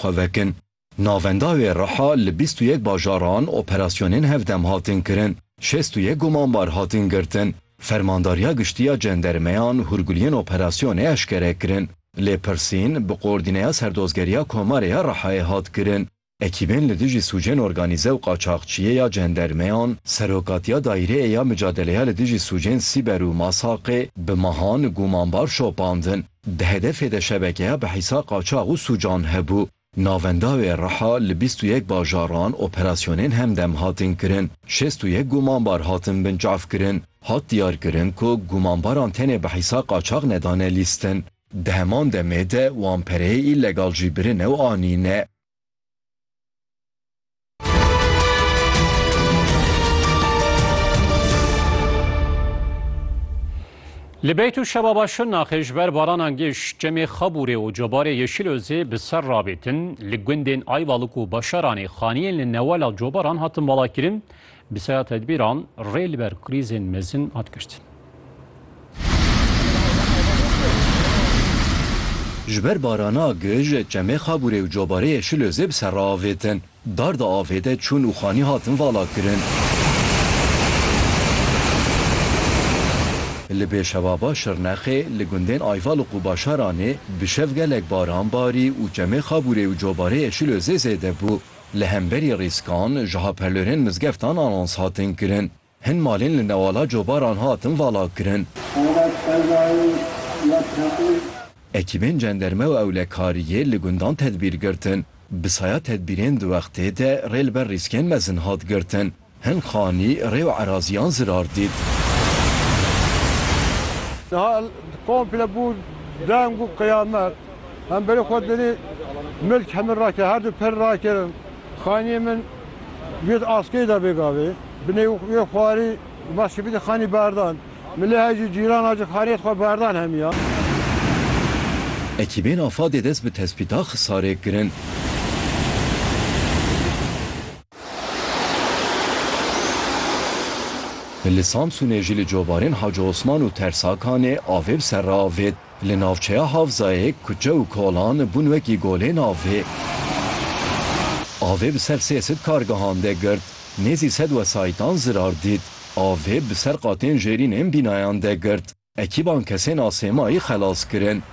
xwe vekin. Navenda wê reha li bîst û yek bajaran operasyonên hevdem hatin kirin, şêst û yek gumanbar hatin girtin. Fermandariya Giştî ya Cendermeyan hûrguliyên operasyonê eşkere kirin. Lêpirsîn bi Koordîneya Serdozgeriya Komarê ya Rihayê hat kirin. Ekîbên li dijî sûcên organîze û qaçaxçiyê ya Cendermeyan, Serokatiya Daîreyê ya Micadeleya li dijî sûcên Sîber û Masaqê bi mehan gumanbar şopandin. Di hedefê de şebekeya bihîsa qaçax û sûcan hebû. Navenda wê Riha li bîst û yek bajaran operasyonên hemdem hatin kirin. Şêst û yek gumanbar hatin binçavkirin. Hat diyarkirin ku gumanbaran tenê bihîsa qaçax nedane lîstin. Di heman demê de wan pereyê îlegal jî birine û anîne. Li beyt û şebaba Şirnaxê ji ber baranan giş çemê Xabûrê û cobarê Yeşîlozê bi ser rabêtin, li gundên Ayvalık û Başaranê xaniyên li newala cobaran hatin valakirin, Bi seya tedbîran rê li ber krîzên mezin hat girtin. Ji ber barana gij çemê Xabûrê û Cobareyê Şilozê bi ser re avêtin. Dar di avê de çûn û xanî hatin valakirin. Li Bêşevaba Şirnexê, li gundên Ayval û Qubaşaranê bi şev gelek baran barî û çemê Xabûrê û Cobareyê Şilozê zêde bû. Li hemberî rîskan, jiha perlorên mizgeftan anons hatin kirin. Hin malên li newala cobaran hatin valakirin. Ekîbên cenderme û ewlekariyê li gundan tedbîr girtin. Bi saya tedbîrên di wextê de rê li ber rîskên mezin hat girtin. Hin xanî rê û eraziyan zirar dît. Niha komple bû deng û qiyamet. Hemberî xwe dinî milk hemin rake, her du pir rakirin. Xaniyê min girt askeyê de bê gavê. Binê wê xwarî ma şibitî xanî berdan. Min lê hejî cîran a ji xaniyê xwe berdan hemiya. Ekîbên Afadê dest bi tespîta Xisarê kirin. Li Samsûnê jî li covarên Hacî Osman û Tersakanê avê bi ser re avêt. Li navçeya Havzayê kuçe û kolan bûn wekî golên avê. Avê bi ser sê sed kargehan de girt. Nêzî sed wesayîtan zirar dît. Avê bi ser qatên jêrîn ên bînayan de girt. Ekîban kesên a sêmayî xelas kirin.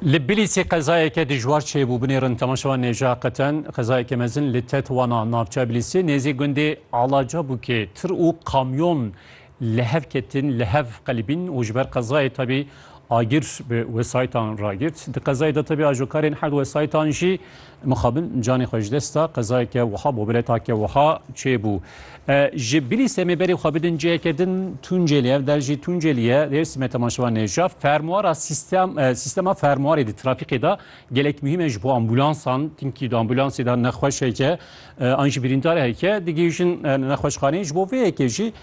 Li Bilîsê qezayeke dijwar çêbû binêrin temaşewa nêja qeten qezayeke mezin li Tetwana navçeya Bilîsê nêzî gundê Alaca bûkê tir û kamyon li hev ketin li hev qelibîn û ji ber qezayê tabî agir bi wesayîtan ragirt. Di qezayê de tabî ajokarên herd wesayîtan jî Mixabin canê xwe ji dest da, qezayeke wiha bo biletake wiha çêbû. Ji bilî semê berê xwe bidin ciheke din Tunceli, ev der jî Tunceli ye, Dêrsimê temaşevan e. Ji fermuara sîstem sîstema fermuarê di trafîkê de gelek muhîm e ji bo ambulansan, tinkî di ambulansê de nexweş heke an jî birîndar heke digihîjin nexweşxaneyê. Ji bo vê yekê jî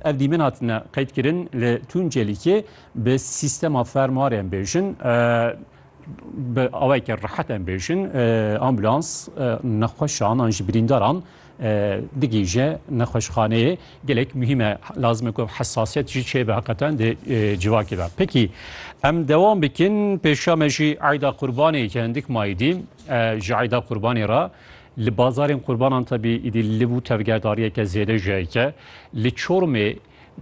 ev dîmen hatine qeydkirin li Tuncelîkê bi sîstema fermuarê em bêjin. Bi awayeke rehet em bêjin ambulans nexweşan an ji birîndaran digihîje nexweşxaneyê gelek muhîm e lazim e ku hesasiyet jî çêbe heqeten di civakê de. Pekî em dewam bikin pêşa me jî eyda qurbanê ke hindik mayî dî ji eyda qurbanê re li bazarên qurbanan tebî îdî li bû tevgerdariyeke zêde ji heke li Çormê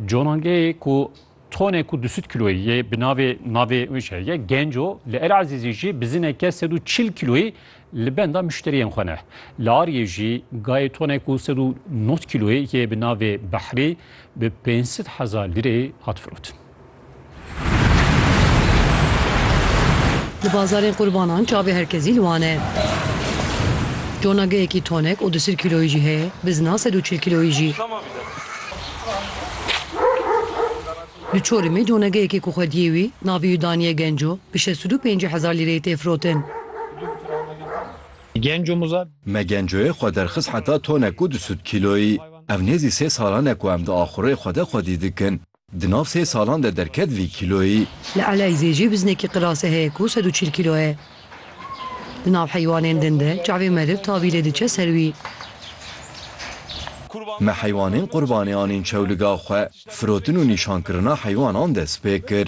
conangeyê ku Tonê ku du sed kîloyî yê bi navê navê wî şer ye genco li El Ezîzî jî bi zineke sed û çil kîloyî li benda muşteriyên xwe ne. Li Ariyê jî gayê tonê ku sed û nod kîloyî yê bi navê Behrî bi pênc sed hezar lîrê hat firotin. Li bazarên qurbanan çavê herkesî li wan e. Conageyekî tonek û du sed kîloyî jî heye, bizina sed û çil kîloyî jî. Li Çorumê donegeyekê ku xwediyê wî navê wî daniye Genco bi şeş û du pêncî hezar lîreyê tê firotin. Me Gencoyê xwe derxist heta tonek û du sed kîloyî. Ev nêzî sê salan e ku em di axurê xwe de xwedî dikin. Di nav sê salan de derket vî kîloyî. Li Eleyzê jî biznekî qirase heye ku sed û çil kîlo ye. Di nav heywanên din de çavê meriv tabîlê diçe ser wî. Me heywanên qurbanê anîn çewliga xwe, firotin û nîşankirina heywanan destpê kir.